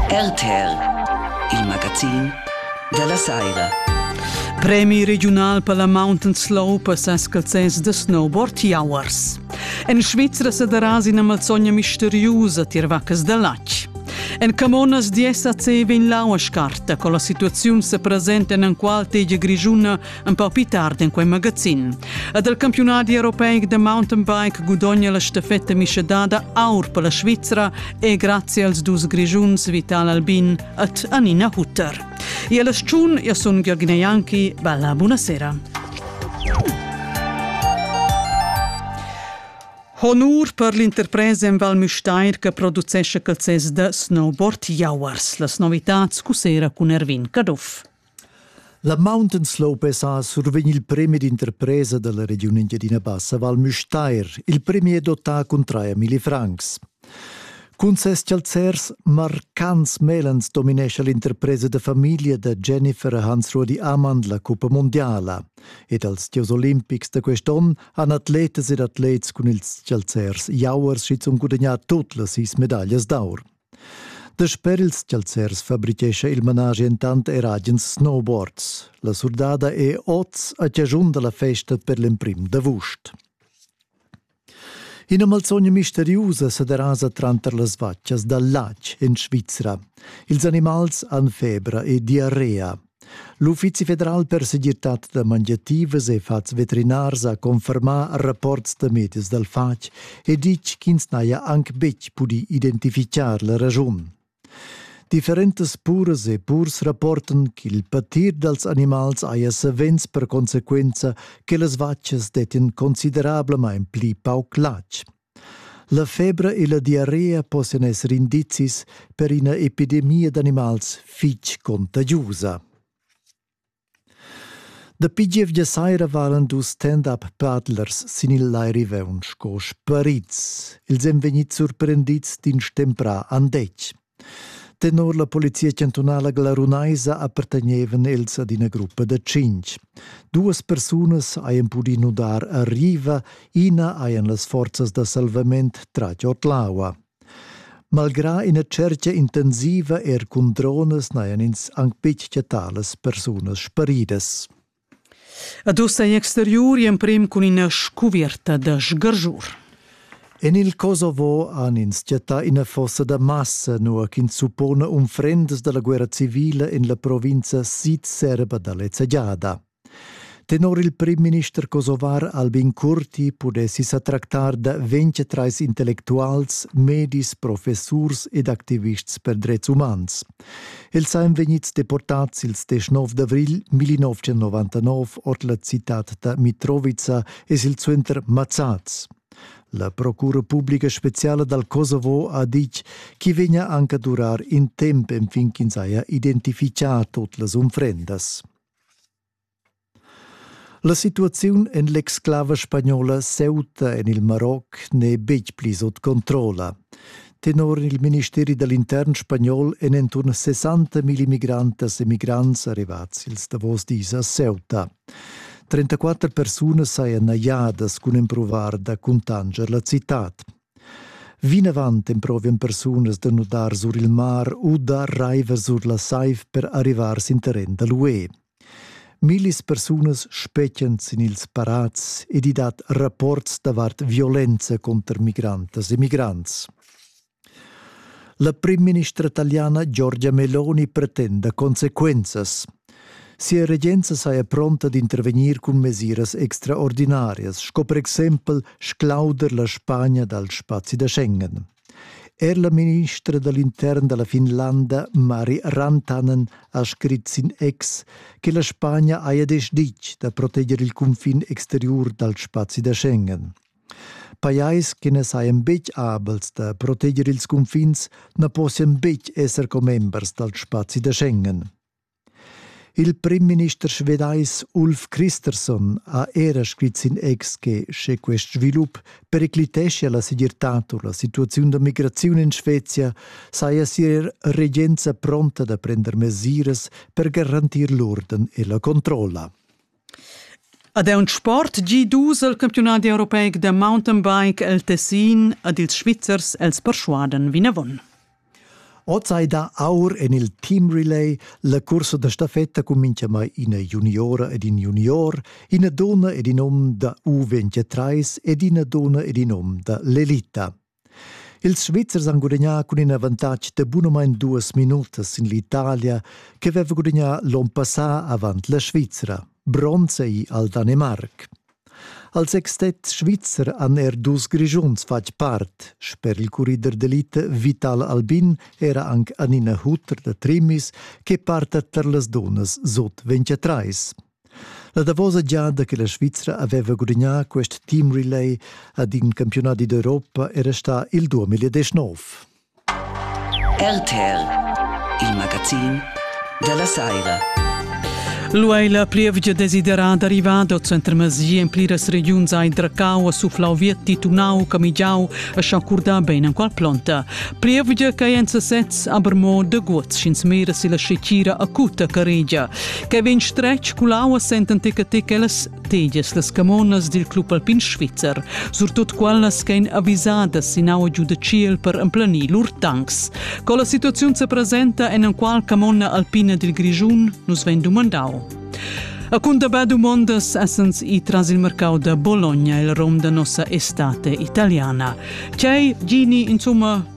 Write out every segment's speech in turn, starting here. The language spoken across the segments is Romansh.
RTL, il magazin dalla saira. Premi regiunal per la mountain slope a Sascalzens da snowboard Jauers. En Svizra sederà ina malzogna misteriusa tier vaccas da latg. En Camonas di SAC vegn lau a scarta con la situaziun se presenta en enqual tegia grigiuna un po più tardi in quei magazin. E del campionat europeic de mountain bike gudogna la stafetta mischedada aur per la Svizzera e grazie als dus grigiuns Vital Albin et Anina Hutter. E alla sciun io sun Giorgina Ianchi, bella buonasera. Honur per l'interpresa en Val Müstair che producesce calzes de snowboard jauers. Las novitats cusera cun Erwin Caduff. La Mountain Slopes ha survegn il premi d'interpresa dalla regiun Engiadina Bassa Val Müstair. Il premi è dotà cun traia milli francs. Cun ses chalzers marcants melans dominescha l'interpresa da famiglia da Jennifer Hansrodi Amand la cuppa mondiala. Ed als gieus olimpics da quest'onn han atletas ed atlets cun ils chalzers jauers schizunt gudagnà tut las sis medaglias d'aur. Dasper ils chalzers fabrichescha il managi entant er agens snowboards. La surdada è oz a chaschun da la festa per l'emprim d'avust. Ina malsogna misteriusa sa derasa tranter las vatgas dal latg en Svizra. Ils animals han febra e diarrea. L'Uffizi federal per segirtad da mangiativas e fats veterinars ha confermà rapports da medis dal fatg e ditg ch'ins n'haja anc betg pudì identifichar la raschun. Differentas puras e purs rapportan ch'il patir dals animals haja savens per consequenza che las vatgas dettian considerablamain pli pauc latg. La febra e la diarrea possian esser indizis per ina epidemia d'animals fitg contagiusa. Dapi gievgia saira valan dus stand-up paddlers sin il Lai Riveun sco sparids. Els èn vegnids surprendids d'in stemprà andetg. Tenor la polizia chantunala glarunaisa appartegnevan els ad ina gruppa da tschintg. Duas persunas hajan pudì nudar a riva, ina hajan las forzas da salvament tratg ord l'aua. Malgrà ina tschertga intensiva er cun dronas n'hajan ins anc betg chattà las persunas sparidas. Ad ussa è exteriur emprim cun ina scuvierta da sgargiur. En il Kosovo han ins chattà ina fossa da massa, nua ch'ins suppona unfrendas da la guerra civila en la provinza sid-serba da lezza giada. Tenor il primminister kosovar Albin Kurti pudessi sa tractar da 23 intellectuals, medis, professurs ed activists per drets umans. Els ein vegnids deportads ils deschnov d'avrigl 1999 ord la citad da Mitrovica e silsuenter mazzads. La procura publica speciala dal Kosovo ha ditg ch'i vegnia anche a durar in temp enfin ch'ins haja identifichà tot las unfrendas. La situaziun en l'exclava spagnola Ceuta en il Maroc n'è betg pli sut controlla. Tenor il ministeri da l'intern spagnol èn inturn 60.000 migrantas e migrants arrivads ils davos dis a Ceuta. 34 persunas sajan najadas cun empruvar da cuntanscher la citad. Vinavant emprovian persunas da nudar sur il mar u da raiver sur la saiv per arrivar sin terren da l'UE. Millis persunas spetgan sin ils parats ed i dat rapports davart violenza cunter migrantas e migrants. La primministra taliana Giorgia Meloni pretenda consequenzas. Sia regenza saja pronta d'intervegnir cun mesiras extraordinarias, sco per exempel sclauder la Spagna dal spazi da Schengen. Er la ministra da l'intern da la Finlanda Mari Rantanen ha scrit sin ex che la Spagna haja deciditg da proteger il cunfin exteriur dal spazi da Schengen. Pajais che na sajan betg abels da proteger ils cunfins na possian betg esser commembers dal spazi da Schengen. Il primminister svedais Ulf Kristersson ha era scrit sin ex che sche quest svilup pericliteschia la segirtad u la situaziun da migraziun en Svezia saja sia regenza pronta da prender mesiras per garantir l'urden e la controlla. Ad aunc sport gi dus el campiunadi europeic da mountainbike el Tessin ed ils Svizzers els perschuadan vinavon. Oz ei da aur en il team relay la cursa da staffetta cun mintgamai ina juniora ed in junior, ina donna ed in hom da U23 ed ina donna ed in hom da l'elita. Ils Svizzers han gudagnà cun in avantatg da bunamain duas minutas sin l'Italia che aveva gudagnà l'onn passà avant la Svizra. Bronz ei al Danemarc. Als sextets svizzer han er dus Grischuns fatg part. Sper il currider d'elite Vital Albin era anc Anina Hutter da Trimis che parta tar las dunnas sut 23. La davosa giada che la Svizra aveva gudagnà quest team relay ad in campiunat d'Europa era stà il 2019. RTL, il magazin della Saira. L'UE è la plievgia desiderada arrivada centro Masia in pliras regiuns a Indracau, a Suflau Vietti, Tunau, Camigiau e Sciancurda ben en qual plonta. Plievgia che è en sesez aber mo de guots sch'ins mira si la scecira acuta che regia. che vegn stretg cul aua sentan tica ticas tegias las camonas dil club alpin svizzer, surtut quellas ch'ein avisadas sin aua giu da tschiel per emplanir lur tanks. Co la situaziun se presenta en enqual camona alpina dil Grischun nos vegn dumandau. A cundabà dumondas essens i tras il mercau da Bologna il rom da nossa estate italiana. C'è, Gini, insomma,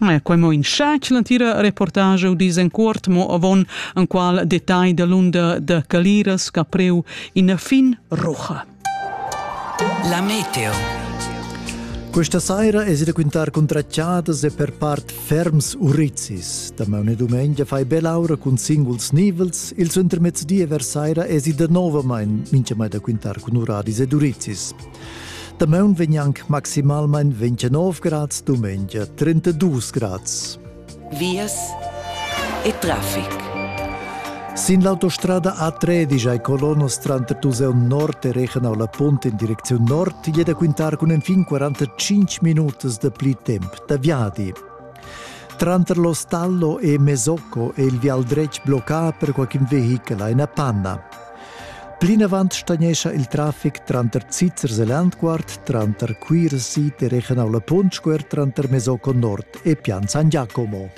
E quei mo in schatg l'entira reportage u disencuort mo avon enqual detagl dalunda da Caliras che ha preu ina fin roja. La meteo. Questa saira es da quintar contracciadas e per part ferms urizis. Da maune dumengia fai belaura cun singuls nivels, il intermezzodia vers saira es da novamain mincha mai da quintar cun uradis ed urizis. Damaun vegn anc maximalmain 29 grads, dumengia 32 grads. Vias e traffic. Sin l'autostrada A13 ai Colonos tranter Tuseu Nord e Rechenau la Punt in direcziun nord è da quintar cun enfin 45 minutas da pli temp da viadi. Tranter lo Stallo e Mesocco è il vial dretg bloccà per qualche vehichel a una panna. Plinavant stagnescha il traffic tranter Zizzers e Landquart, tranter Cuira Sid e Rechenau la Punt Squer, tranter Mesocco Nord e Pian San Giacomo.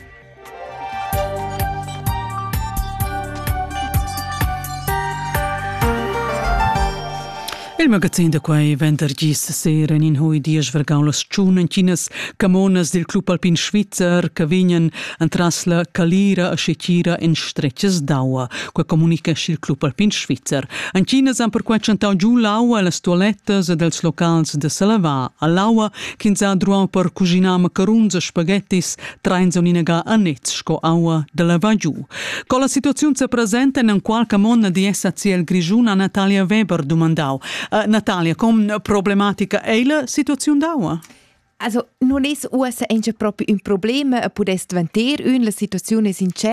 Il magazin da quai vendergis sera in hui diesch vergau las tschunentinas camonas dil club alpin svizzer che vegnan entras la calira a scetira en stretgas d'aua. Qua comunicescha il club alpin svizzer. Anchinas han perquai chantau giu l'aua las tualettas ed els locals de Salava. All'aua ch'ins ha druau per cuginar macarons e spaghettis, train son inaga anets sco aua da la vagiu. Co la situaziun se presenta in qualche monna di essa ciel grigiun a Natalia Weber dumandau. Uh, Natalia, com problematica è la situaziun d'aua? Also, non es uossa engia propi un problema a pudest vanter, ün la situazione sincera,